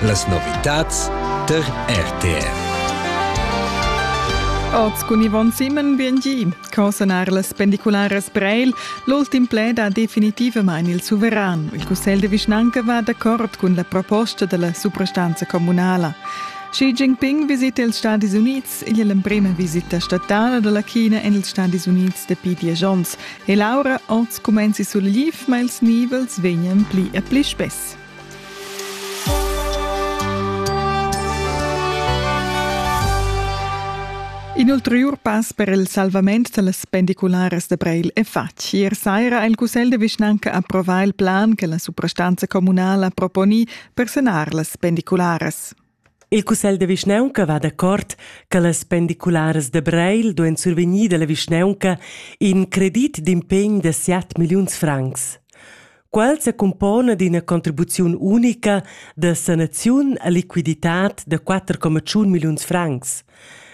Las novitads tar RTR. Oz cun Yvonne Simon, BNG. Co sanar las pendicularas Breil? L'ultim pled ha definitivamain il suveran. Il Cussegl de Vischnanca va d'accord cun la proposta della suprastanza comunala. Xi Jinping visita ils Stadis Units igl emprema visita statala dalla China en ils Stadis Unids dapi diesch onns. E Laura, oz cumenzi sul liv, ma ils nivels vegnan pli e pli spess. In ulterior pass per il salvament dallas pendicularas da Breil è fatg. Ier saira ha il Cussegl de Vischnanca approvà il plan che la suprastanza communala proponi per sanar las pendicularas. Il cussegl da vischnaunca va d'accord che las pendicularas da Breil duein survegnir dalla vischnaunca in credit d'impegn da siat milliuns francs. Quel secumpona d'ina contribuziun unica da sanaziun a liquiditad da 4,1 milliuns francs.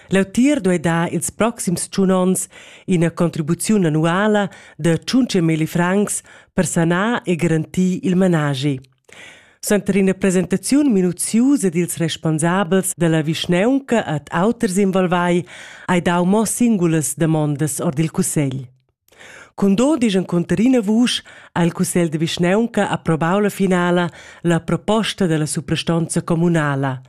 L'autir duei dar ils proxims tschun onns ina contribuziun annuala da 5 milli francs per sanar e garantir il managi. Suenter ina presentaziun minuziusa dils responsabels dalla vischnaunca ad auters involvai hai dau mo singulas damondas ord il cussegl. Cun do digen conterina vusch ha il cussegl de vischnaunca approvau la finala la proposta della suprastonza communala.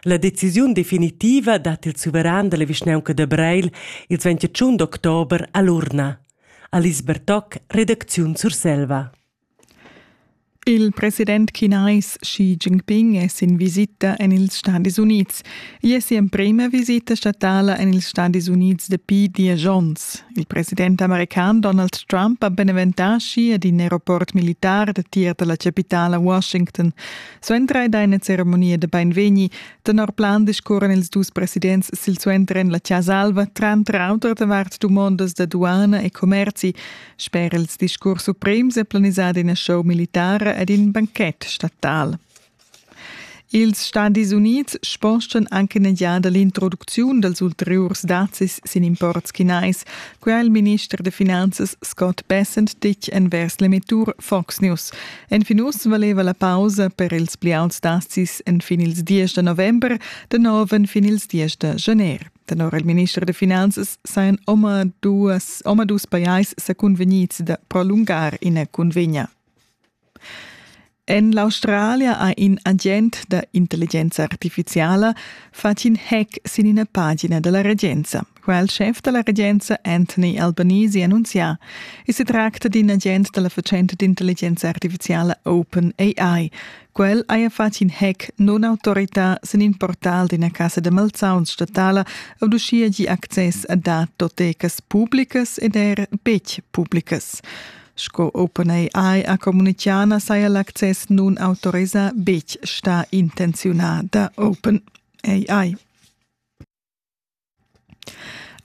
La decisiun definitiva dat il suveran della vischnaunca de Breil il 21 october all'urna. Alice Bertoc, redacziun Surselva. Il president chinais Xi Jinping è sin visita en ils Stadis Unids. Igl è si'emprima visita statala en ils Stadis Unids dapi diesch onns. Il president american Donald Trump ha beneventà Xi ad in aeroport militar datier da la chapitala Washington. Suenter ed ina ceremonia da bainvegni. Tenor plan discurran ils dus presidents silsuenter en la Chasa Alva, tranter auter davart dumondas da duana e commerzi. Sper ils discurs suprems è planisada ina show militara ed in banchet statal. Ils Stadis Unids spostan anche in egliada l'introducziun dals ulteriurs dazis sin imports chinais, quai il minister da finanzas Scott Bessent ditg envers l'emettur Fox News. Enfin uss valeva la pausa per ils pli auts dazis en fin ils 10 da november, da nov en fin ils 10 da gener. Tenor il minister da finanzas sajan omadus, omadus pajais sa cunvegnids da prolungar ina cunvegna. En l'Australia ha in agent da intelligenza artificiala fatg in hack sin ina pagina da la regenza. Quel schef da la regenza Anthony Albanese annunzià. E si tracta d'in agent da la fatschenta d'intelligenza artificiala OpenAI Quel haja fatg in hec non autorità sin in portal d'ina casa da malsauns statala ed uschia gi access a datotecas publicas ed er betg publicas. Sco OpenAI ha communitgà saja l'access nun autorisà betg stà intenziunà da OpenAI.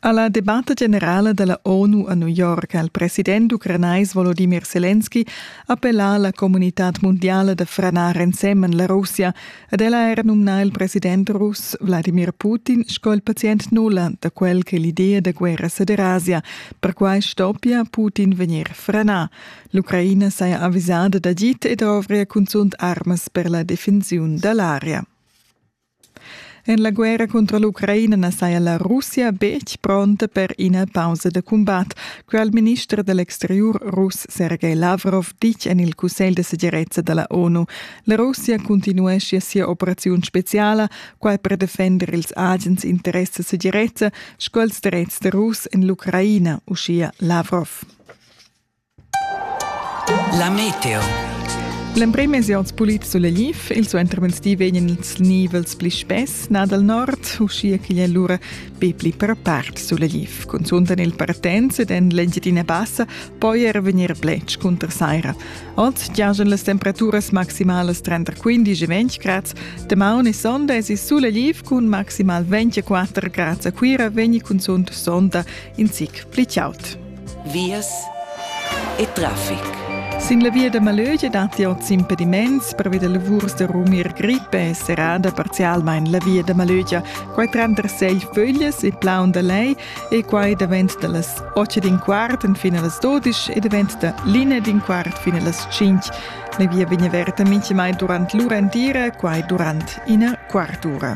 Alla debatta generala della ONU a New York ha il president ucranais Volodymyr Zelensky appellà alla comunitad mondiale da franar ensemen la Russia ed el ha era numnà il president russ Vladimir Putin sco il pazient nulla da quel che l'idea da guerra ceder Asia. Perquai stoppia Putin vegnir franà. L'Ucraina saja avvisada d'agit e dovria cunzunt armas per la defensiun dall'area. En la guerra contra l'Ucraina na saja la Russia betg pronta per ina pausa da cumbat, quai ha il minister da l'exteriur russ Sergei Lavrov ditg en il Cussegl da segirezza da la ONU. La Russia cuntinueschia sia operaziun speziala, quai per defender ils agens interess da segirezza sco ils dretgs da russ en l'Ucraina, uschia Lavrov. La meteo. L'emprim mesi oz pulit sulla Lif, il suenter venstì vegnan ils nivels pli spess nà dal nord, uschia ch'igl è lura be pli per part sulla Lif. Cunzunt en il partenz ed en l'Engiadina Bassa poi er vegnir bletsch cunter saira. Oz giajan las temperaturas maximalas 30-15-20 grads. Damaun e sonda èsi sulla Lif cun maximal 24 grads a Cuira vegni cunzunt sonda in zic pli chaud. vias e traffic. Sin la via da Malögia datti oz impediments pervi da lavurs da rumir grippe e serrada parzialmain la via da Malögia. Quai tranter sei föglias e plaun da lei e quai davent da las 8 d'in quart fin a las 12 e davent da linea d'in quart fin a las 5. La via vegn averta mintgamai durant l'ura entira, quai durant ina quart'ura.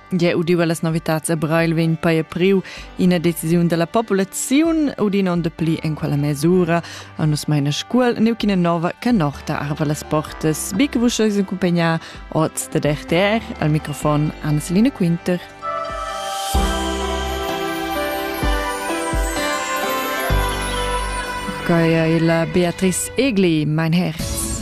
Gie udiva las novitads a Breil vegn paia priu ina decisiun dalla populaziun udina de pli en quella mesura a nus meina scuol neuchina nova che norta arva las portas bi che vus eis accompagnar oz de DRTR al microfon Anselina Quinter Gaia la Beatrice Egli, mein Herz.